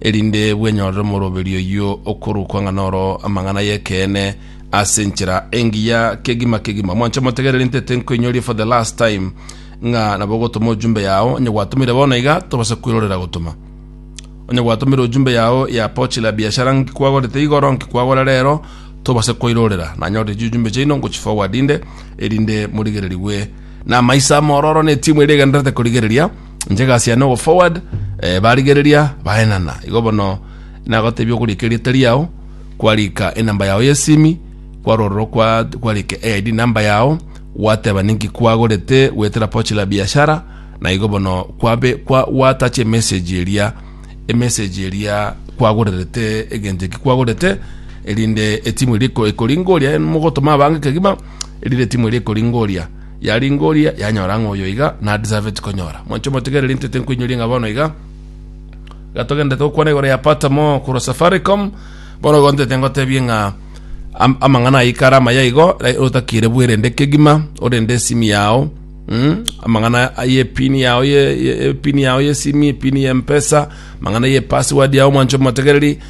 erinde bwenyorere omoroberi oyio okorokwa ng'a noro amang'ana y'ekeene ase enchera engiya kegima kegima. Mwanche motegerere nte tenkoinyoria for the last time ng'a nabo ogotoma ojumbe yao onye gwatomire bono iga tobase kwirorera gotoma onye gwatomire ojumbe yao ya pochi la biashara nki kwagorete igoro nki kwagora rero tobase kwairorera nanyorire chiujumbe chaino ngochiforwardinde erinde morigererigwe na amaiso amororo na etimu ere egenderete korigereria inche egasi yane ogo forward eh, barigereria baenana igo bono nagotebia ogorika erieta riao kwarika enamba yao yesimi kwarororo kwa kwarika AID namba yao gwateba ninki kwagorete gwetera pochi la biashara na igo bono kwabe kwa watache message eria emessage eria kwagorerete egento eki kwagorete erinde etimu eriko ekoringoria mogotoma abange kegima erinde etimu erikoringoria Yaringoria, yanyora ng'a oyo iga nadeserveti konyora. Mwanche omotegereri intete nkoinyoria ng'a bono iga iga togenderete gokwana igoro ya Patamo korwa Safaricom, bono igo ntete ngotebie ng'a am- amang'ana ayika are amaya igo, eh, otakire bwerende kegima, orende esimi yao, mm, amang'ana aye epini yao ye- ye- epini yao yesimi, epini ya mpesa, amang'ana ye password yao mwanche omotegereri,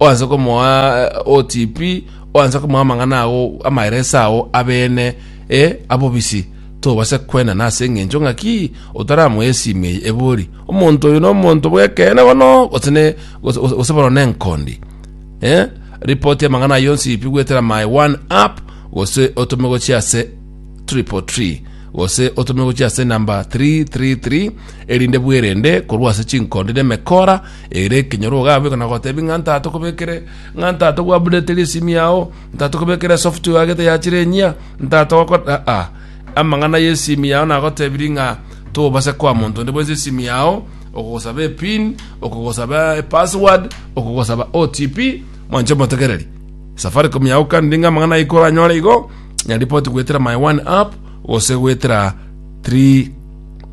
oanse komoa eh, OTP, oanse komoa amang'ana ao amaeresa ao abene e abobisi tobase kwena nase eng'encho ng'aki otaramoa esimi eye ebori omonto oyo nomonto bwekene bono gose ne- gose- gose gose bono nenkondi eh? ripoti amang'ana ayo yonsi ipi gwetera my one app gose otome gochia ase triple tree gose otome gochia ase namba 333 erinde bwerende korwa ase chinkondi nemekora Ere ekenyoro ogabeka na gotebia ng'a ntatokobekere, ng'a ntato gwabudetere esimi yao, ntato kobekere software yagete yachire enyia, ntato gokora aa. Amang'ana y'esimi yao nagotebirie ng'a tobasa koa monto onde bwensi esimi yao, okogosaba epin, okogosaba epassword, okogosaba OTP, mwanche motegereri. Safaricom yagokaniri ng'a amang'ana aiko oranyore igo, nyaripoti goetera my one app, gose goetera 3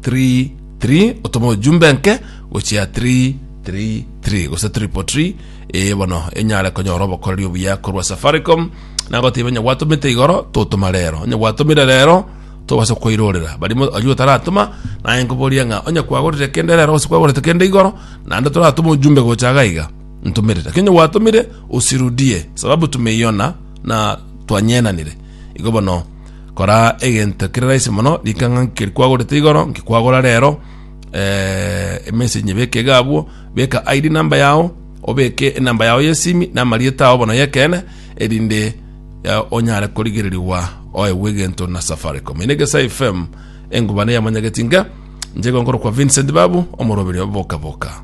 3 Tri, otome ojumbe nke gochia tri, tri, tri, gose triple tri, ee bono enyare konyora obokoreri obuya korwa Safaricom. Nagotiba onye gwatomete igoro, totoma rero. Onye gwatomire rero, tobase koirorera. Barimo aywo taratoma, naye nkoboria ng'a onye kwagorire kende rero gose kwagorete kende igoro, naende toratome ojumbe gocha iga iga. Ntomere. Lakini onye gwatomire, usirudie, sababu tumeiona na twanyenanire. Igo bono Kora egento kere rahisi mono, rikang'a nkeri kwagorete igoro, nkikwagora rero, eh, emessage beka iga abwo, beka ID number yao, obeke enamba yao yesimi, na amarieta yao bono yekene, erinde eh, onyare korigererigwa oegwe egento na Safaricom. Ine Gesa FM, engubana yamanyageti nka, njegonkoro kwa Vincent Babu, omoroberi oboka boka.